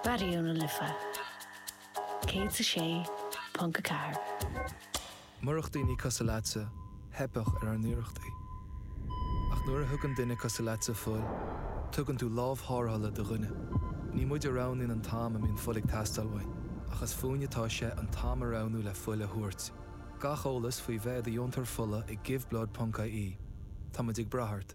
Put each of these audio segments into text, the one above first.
Raidió na Life 106.4. Murach daoine cosúil leatsa, theipfeadh ar ár n-iarrachtaí. Ach nuair a thugann duine cosúil leatsa fuil, tugann tú lámh tharrthála do dhuine. Ní muid a roghnaíonn an t-am a mbíonn fuil ag teastáil uainn, ach is fúinn atá sé an t-am a roghnú le fuil a thabhairt. Gach eolas faoi bheith i do dheontóir fola ag Give Blood ponc IE. Tá muid ag brath ort.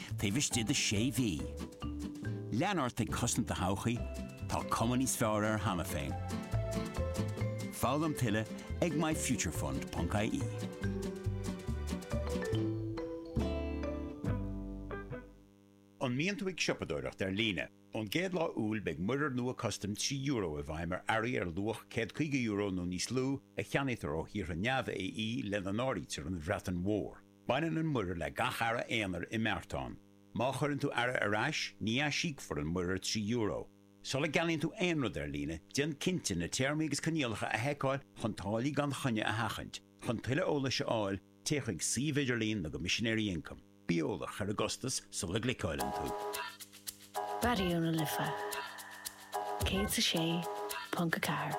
taobh istigh de sé mhí. Lean ort ag cosaint do thodhchaí, tá cuma níos fearr air cheana féin. Foghlaim tuilleadh ag myfuturefund.ie. An mbíonn tú ag siopadóireacht ar líne? Ón gcéad lá Iúil beidh muirear nua custaim trí euro i bhfeidhm ar earraí ar luach €150 nó níos lú a cheannaítear ó thíortha neamh-AE lena n-áirítear an Bhreatain Mhór. Baineann an muirear le gach earra aonair i mbeartán. Má chuireann tú earra ar ais, ní aisíocfar an muirear €3. Sula gceannaíonn tú aon rud ar líne, déan cinnte na téarmaí agus coinníollacha a sheiceáil chun táillí gan choinne a sheachaint. Chun tuilleadh eolais a fháil, téigh chuig suíomh idirlín na gCoimisinéirí Ioncaim. Bí eolach ar an gcostas sula gcliceáileann tú. Raidió na Life 106.4.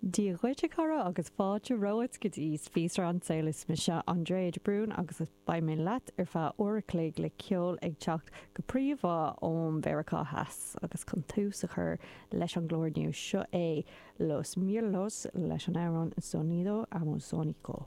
Dia dhuit a chara agus fáilte romhat go dtí Spíosra an tSaoil is mise Andrea de Brún agus beidh mé leat ar feadh uair a chloig le ceol ag teacht go príomha ón Mheiriceá Theas agus chun tús a chur leis an gclár inniu seo é Los Mirlos leis an amhrán Sonido Amazónico.